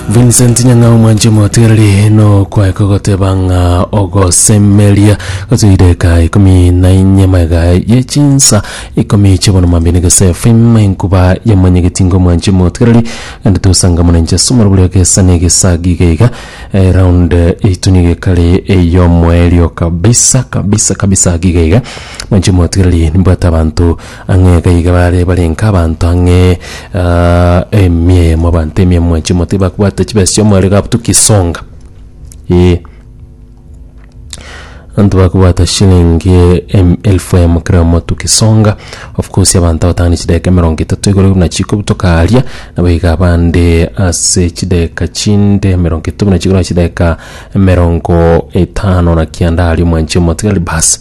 vincent nyang'a omwanche mwatereri nokwae kogoteba ng'a ogosemeria gotoire ka ikumi na inye maega ye chinsa ikumi chibono mambini gese fm enkuba ya manyegetingo omwanche mwatereri ande tosanga muna inche somoro boria gesa na egesagi iga iga eh, round eitu niga ekare eyomwerio kabisa kabisa kabisa giga iga mwanche mwatereri nimbwate abanto Ang'e gaiga bare barenge abanto ang'e ah, emiemo abanto emiemo ya chimoti bakbwate chibesa chi'omorero gabutu kisonga eh Anto bakobwata shilingi em- elfu emo kera omotu kisonga of course abanto abatano chideka emerongo etato igoro buna chiko butokaaria nabo iga abande ase chideka chinde emerongo etato buna chiko na chideka emerongo etano na kianda aria omwanchi omotigari bas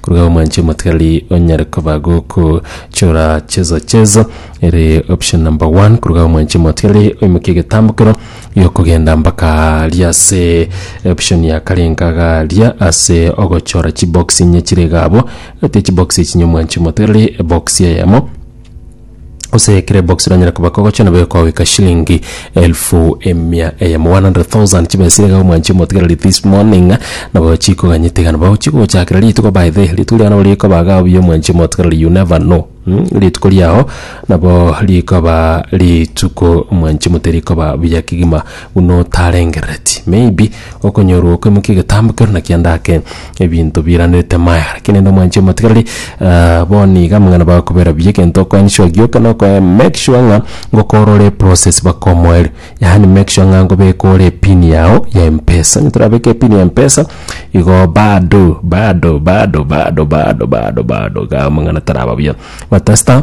Koruga omwanche omotigareri onyare koba goko chora chezo chezo ere option number one koruga omwanche omotigareri oimoke egetambokero giokogenda mpaka aria ase option ya kare nkaga aria ase ogochora chibox inye chire iga abwo egati ya chibox echio inye omwanche omotigareri ebox eyemo gose ekere box ranyare koba kogocha nabo ekogeka shilingi elfu emia eyemo 100,000 chibesire iga omwanchi omotigereri this morning nabo chikoganyete iga nabo chigochakera rituko by the rituko riao nabo rikoba iga obuya omwanchi omotigereri you never know mm, rituko riao nabo rikoba rituko omwanchi omote rikoba buya kegima buna otarengerereti maybe okonyorwa okoimokia egetambo kero na kianda ake ebinto biiranerete amaega. Lakini rende omwanchie omatigarari, eh, bono iga amang'ana bagokobera buya egento oko ensure gioka na okoe make sure ng'a ngokora ore process baka omoerio. Yaani make sure ng'a ngobeka ore epin yao ya Mpesa. Onye torabeke epin ya Mpesa, igo bado, bado, bado, bado, bado, bado, bado iga amang'ana taraba buya. But tasta.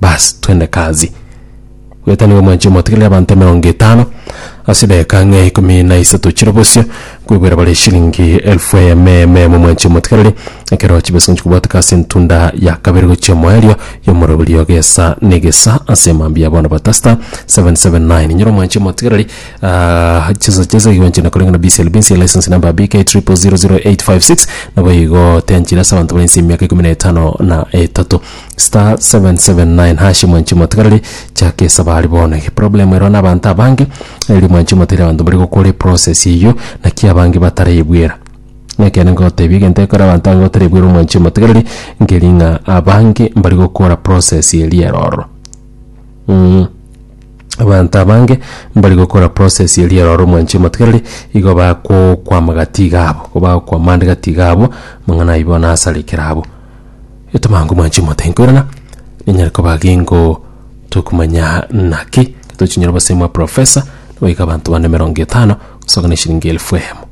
Baas, twende kazi. Goeta nigo mwanche motigerere abanto emerongo etano ase edageka ng'a ikomi na isato chire bosio, nkoigwera bare eshilingi elfu eyemo eyemo eyemo mwanche motigereri, ekero chibesa ngochia kobwateka ase entunda ya kabere gochia omoerio y'omoroberio gesa na egesa ase mambia ya bono batasta 779 nyiro mwanche motigereri ah, chisa chesa igo nchina koreng'a na BCLB nse license number BK 000856 nabo igo tenchire ase abanto bari nse y'emiaka ikomi na etano na etato Star 779 hash mwanchi motigarari chaka esaba ari bono ege problem erwa na abanto abange eri mwanchi motere abanto bari gokora eprocess eyio naki abange bataraebwera nekene ngotebia egento ekore abanto abange batarebwera omwanchi motigarari nkeri ng'a abange mbari gokora process eria ero ororo mm abanto abange mbari gokora process eria ero ororo omwanchi motigarari igo bakokwama gati iga abo igo bagokwama ande gati iga abo amang'ana ayio bono asarikire abwo. Etomangoma nchi motari nkoirana, ninyare koba gingo tokumanya naki tochinyora obosemi bwa professor, goika abanto bane emerongo etano, gosoka na eshiringi elfu eyemo.